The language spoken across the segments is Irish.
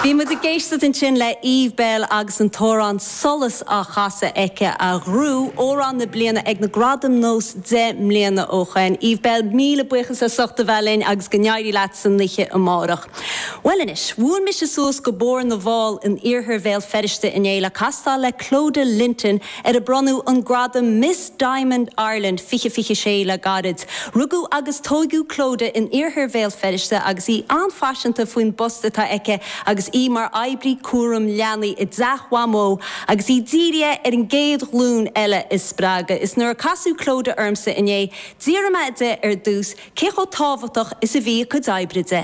Bhí muid ag éisteacht ansin le Eve Belle agus an t-amhrán 'Solas' á chasadh aici, a ghnóthaigh Amhrán na Bliana ag na Gradaim Nós deich mbliana ó shoin. Eve Belle, míle buíochas as ucht a bheith linn agus go n-éirí leat san oíche amárach. Bhuel anois, bhuail mise suas go Bóthar na bhFál in Iarthar Bhéal Feirste inné le castáil le Clodagh Linton, ar a bronnadh an gradam Miss Diamond Ireland 2026 le gairid. Rugadh agus tóigeadh Clodagh in Iarthar Bhéal Feirste agus í an-phaiseanta faoin bpost atá aici agus í mar oibrí cúraim leanaí i dTeach Mhamó agus í dírithe ar an gcéad ghlúin eile a spreagadh. Is nuair a casadh Clodagh ormsa inné, d'iarr mé di ar dtús cé chomh tábhachtach is a bhí a cuid oibre di.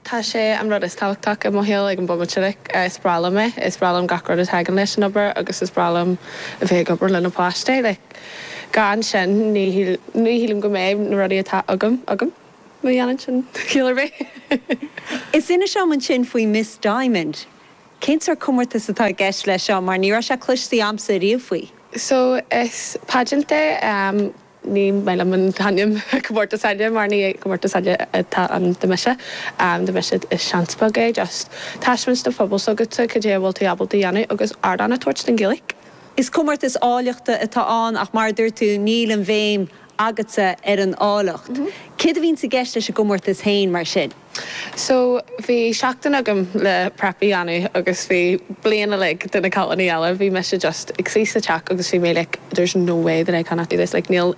Tá sé an rud is tábhachtach i mo shaol ag an bomaite like is breá liom é, is breá liom gach rud a tagann leis an obair agus is breá liom a bheith ag obair le na páistí like gan sin ní ní shílim go mbeidh na rudaí atá agam agam má dhéanann sin ciall ar bith. Is inis dom ansin faoi Miss Diamond. Cén sórt comórtas atá i gceist leis seo mar ní raibh sé cloiste a'msa ariamh faoi? So is pageant é. Ní maith liom an t-ainm comórtas áille mar ní comórtas áille atá ann do mise. Do mise is seans beag é, just taispeáint don phobal s'agatsa cad é a bhfuil tú ábalta a dhéanamh agus ardán a tabhairt don Ghaeilge. Is comórtas áilleachta atá ann ach mar a dúirt tú níl an bhéim agatsa ar an áilleacht. Céard a bhíonns i gceist leis an gcomórtas féin mar sin? So, bhí seachtain agam le prep a dhéanamh agus bhí bliain uilig de na cailíní eile, bhí mise just ag suí sa teach agus bhí mé like there's no way that I cannot do this like níl,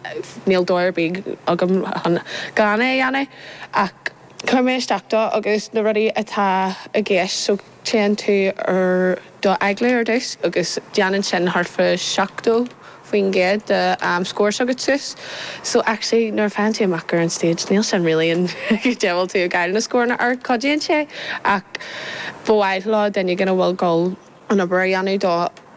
níl dóigh ar bith agam chun gan é a dhéanamh ach chuir mé isteach dó agus na rudaí atá i gceist so, Téann tú ar do agallamh ar dtús agus déanann sin thart fa 70% den score s'agat suas. So actually nuair a théann tú amach ar an stage níl sin really an dóigh a bhfuil tú ag fháil na scóranna ar, cuidíonn sé ach ba mhaith leo duine éigin a bhfuil ag gabháil an obair a dhéanamh dó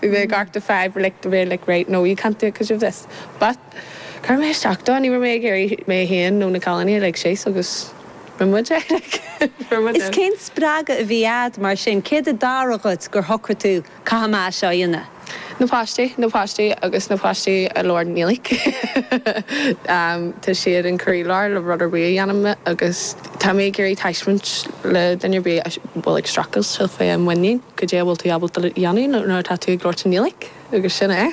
Bhí mé ag amharc do Five like the way like right no you can't do it because of this but Chuir mé isteach dó ní raibh mé ag iarraidh mé féin nó na cailíní a lig síos agus rinne muid é like rinne muid é. Is cén spreagadh a bhí agat mar sin? Céard a tharla dhuit gur shocraigh tú Caithfidh mé é seo a dhéanamh? Na páistí, na páistí agus na páistí i lár an aonaigh. Tá siad an croílár le rud ar bith a dhéanaim agus. Tá mé ag iarraidh taispeáint le duine ar bith a bhfuil ag streachailt le féinmhuinín goidé a bhfuil tú ábalta a dhéanamh nuair atá tú ag labhairt i nGaeilge agus sin é.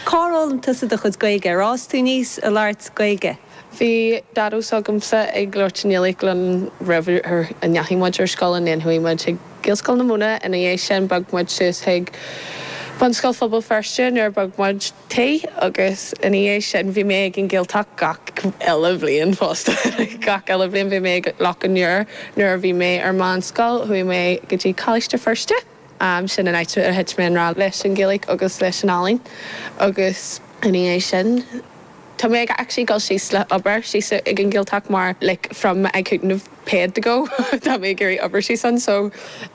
Cár fhoghlaim tusa do chuid Gaeilge? Ar fhás tú aníos ag labhairt Gaeilge? Bhí Daideo s'agamsa ag labhairt i nGaeilge linn roimh a ndeachaigh muid ar scoil, and then chuaigh muid ag. Gaelscoil na Móna ina dhiaidh sin. Bhog muid suas chuig Bunscoil Phobal Feirste nuair a bhog muid tí agus ina dhiaidh sin bhí mé ag an Gaeltacht gach aon bhliain fosta. Gach aon bhliain bhí mé ag Loch an Iúir. Nuair a bhí mé ar meánscoil chuaigh mé go dtí Coláiste Feirste. Sin an áit a thit mé i ngrá leis an Ghaeilge agus leis an ealaín agus ina dhiaidh sin, Tá mé ag actually dul síos le obair síos ag an Gaeltacht mar like from I couldn't get paid to go tá mé ag iarraidh obair síos ann so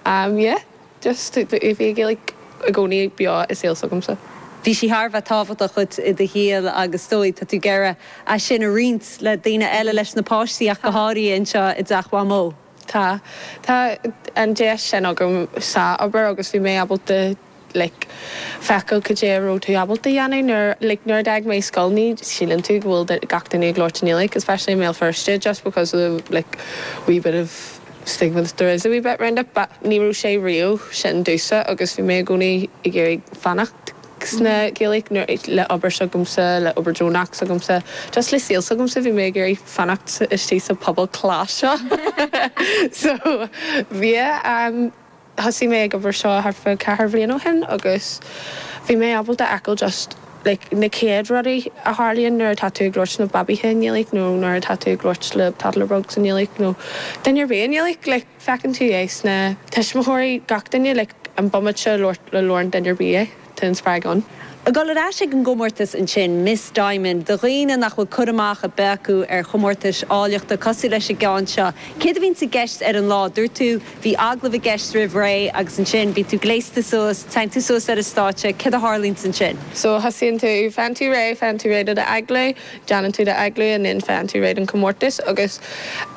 um yeah just bhí an Ghaeilge i gcónaí beo i saol s'agamsa. Bhí sí thar a bheith tábhachtach duit i do shaol agus is dóigh tá tú ag iarraidh é sin a roinnt le daoine eile, leis na páistí ach go háirithe anseo i dTeach Mhamó. Tá. Tá an deis sin agam sa obair agus bhí mé ábalta like feiceáil cad é a raibh tú ábalta a dhéanamh nuair like nuair a d'fhág mé scoil ní shíleann tú go bhfuil gach duine ag labhairt i nGaeilge like especially i mBéal Feirste just because of the like wee bit of stigma that there is a wee bit round it but ní raibh sé riamh sin domhsa agus bhí mé i gcónaí ag iarraidh fanacht sna Gaeilge nuair le obair s'agamsa le obair deonach s'agamsa just le saol s'agamsa bhí mé ag iarraidh fanacht istigh sa pobal class seo so yeah. Thosaigh mé ag obair seo thart fá ceathair bhliain ó shin agus bhí mé ábalta feiceáil just like na céad rudaí a tharlaíonn nuair atá tú ag labhairt na babaithe i nGaeilge nó nuair atá tú ag labhairt le tuismitheoirí i nGaeilge nó duine ar bith i nGaeilge like feiceann tú é sna tuismitheoirí gach duine like an bomaite a labhairt le labhrann duine ar bith é. Tá an spreagadh ann. Ag dul ar ais ag an gcomórtas ansin, Miss Diamond, do dhaoine nach bhfuil cur amach ar bith acu ar chomórtais áilleachta cosúil leis an gceann seo. Céard a bhíonns i gceist ar an lá? Dúirt tú, bhí agallamh i gceist roimh ré agus ansin bíonn tú gléasta suas, téann tú suas ar an stáitse, céard a tharlaíonns ansin? So, thosaíonn tú, faigheann tú réidh, faigheann tú réidh do do agallamh, déanann tú do agallamh and then faigheann tú réidh don chomórtas agus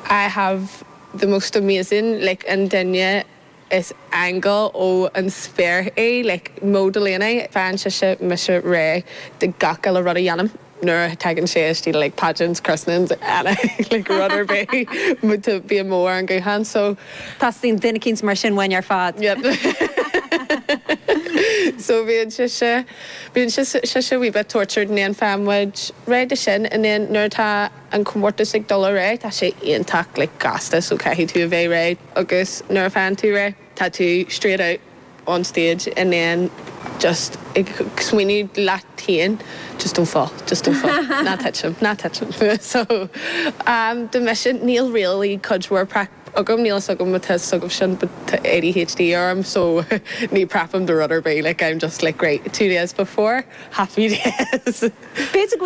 I have the most amazing, like an duine. Is aingeal ó an spéir í, like Mo Delaney. Faigheann sise, mise, réidh do gach uile rud a dhéanaim nuair a tagann sé istigh, like pageants, christenings, anything, like rud ar bith. Bíonn Mo ar an guthán, so. Teastaíonn duine eicínt mar sin uainn ar fad. Yep. So bhíonn sise, bíonn sise wee bit tortured and then faigheann muid réidh do sin and then nuair atá. an comórtas ag dul ar aghaidh, tá sé iontach like gasta so caithfidh tú a bheith réidh agus nuair a fhaigheann tú réidh tá tú straight out on stage and then just ag smaoineamh leat féin just don't fall, just don't fall, ná titim, ná titim so um do mise níl really cuid mhór prep agam, níl a fhios agam má tá a fhios agaibh sin but tá ADHD orm so ní prepaim do rud ar bith like I'm just like right two days before, happy days. B'fhéidir go